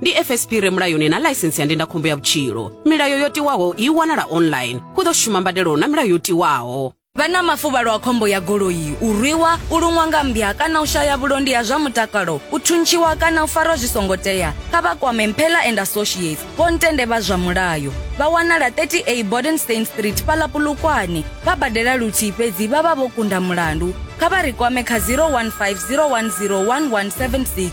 ndi fsp re mulayoni na ḽaisentsi ya ndindakhombo ya vhutshilo milayo yo tiwaho i wanala online hu ḓo shuma mbadelo na milayo yo tiwaho vha na mafuvhalo a khombo ya goloi u rwiwa u luṅwa nga mmbya kana u shaya vhulondi ha zwa mutakalo u thuntshiwa kana u farwa zwi songo tea kha vha kwame mphela and associates vho ntende vha zwa mulayo vha wanala 30a bodenstein street fhaḽa pulukwane vha badela luthihi fhedzi vha vha vho kunda mulandu kha vha ri kwame kha 015 010 1176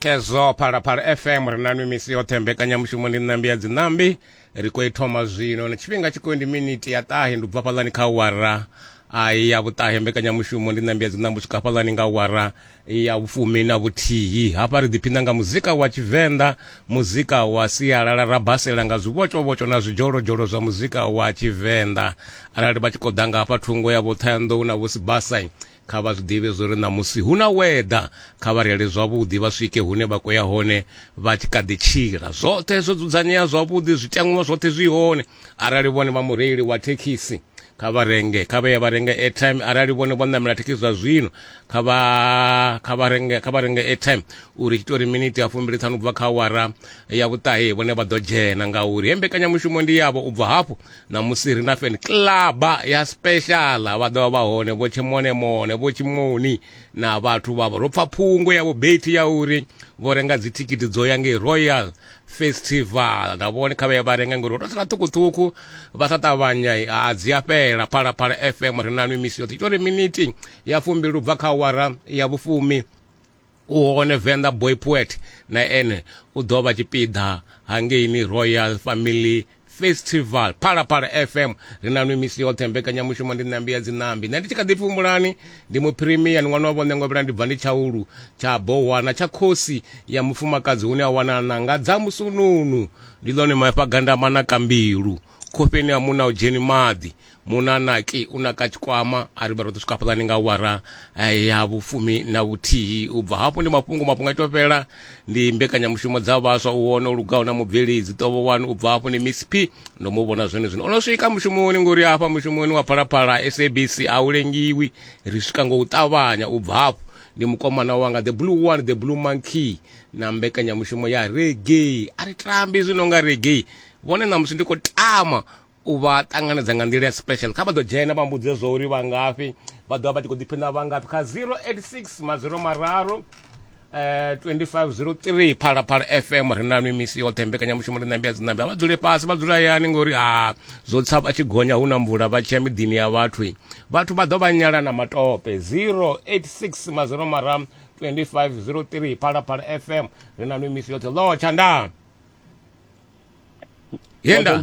khezwo phalaphala fm ri na nwi misi yoṱhe mbekanyamushumo ndi ṋambi ya dziṋambi ri khou i thoma zwino na tshifhinga tshi khou ndi miniti ya ṱahe ndi bva fhaḽani kha wara ai ya vhuṱahe mbekanyamushumo ndi ṋambi ya dziṋambi u swika fhaḽani nga wara ya vhufumi na vhuthihi hafha ri ḓiphina nga muzika wa tshivenḓa muzika wa sialala ra basela nga zwivhotshovhotsho na zwidzholozdzholo zwa muzika wa tshivenḓa arali vha tshi khou ḓa nga hafha thungo ya vho ṱhayanḓou na vho sibasai kha vha zwi ḓivhe zwo ri ṋamusi hu na weḓa kha vha reile zwavhuḓi vha swike hune vha khou ya hone vha tshi kha ḓi tshila zwoṱhe zwo dzudzanyea zwavhuḓi zwiteṅwa zwoṱhe zwi hone arali vhone vha mureili wa thekhisi kha vha renge kha vha ye vha renge airtime arali vhone vho ṋamela thekhisi zwa zwino kha vha kha vha renge kha vha renge airtime uri tshi tori miniti ya fumbili ṱhanu ubva kha awara ya vhuṱahe vhone vha ḓo dzhena ngauri he mbekanyamushumo ndi yavho ubva hafho ṋamusi ri na feni kilaba ya speciala vha ḓovha vha hone vho tshemonemone vho tshimoni na vhathu vhavho ro pfa phungo ya vhubeti ya uri vho renga dzithikhithi dzo ya ngei royal festival na vhone kha vhaya vha renga ngori ro sala ṱhukhuṱhukhu vha sa ṱavhanya a dzi a fhela phalaphala fm ri na nwi misi yoṱhe ita uri miniti ya fumbi lu bva kha awara ya vhufumi u hone venḓa boy poet na ene u ḓo vha tshipiḓa hangeini royal family festival phalaphala fm ri na nwi misi yoṱhe mbekanyamushumo ndi ṋambi ya dzinambi nṋe ndi tshi kha ḓi pfi humbulani ndi muphirimiya ni ṅwana wa vhone ngovhela ndi bva ndi tshaulu tsha bohwana tsha khosi ya mufumakadzi hune a wana nanga dza musununu ndi ḽone mafha gandamana ka mbilu khofheni ha muna u dzheni maḓi munanaki u naka tshikwama a ri vha ro ḓo swika fhaḽani nga wara eh, ya vhufumi na vhuthihi u bva hafho ndi mafhungo mafhungo a ito fhela ndi mbekanyamushumo dza vhaswa u wona u lugaho na mubveledzi ṱovo wanu u bva hafho ndi miss p ndo mu vhona zwone zwino o no swika mushumoni ngori hafha mushumoni wa phalaphala sabc a u lengiwi ri swika ngo u ṱavhanya u bva hafho ndi mukomana wanga the blue one the blue monkey na mbekanyamushumo ya reggae a ri tambi zwino nga reggae vhone ṋamusi ndi khou tama u vha ṱanganedza nga nḓila ya special kha vha ḓo dzhena vha mbudze zwo uri vha ngafhi vha ḓovha vha tshi khou ḓiphina vha ngafhi kha 086 maziro mararu eh 2503 phalaphala fm ri na mimisi yoṱhe mbekanyamushumo ri nambi ya dzinambi a vha dzule fhasi vha dzula hayani ngori ha zwo tsa vha tshi gonya hu na mvula vha tshiya miḓini ya vhathu vhathu vha ḓo vha nyala na matope 086 maziro mararu 2503 phalaphala fm ri na mimisi yoṱhe lotsha ndaa yenda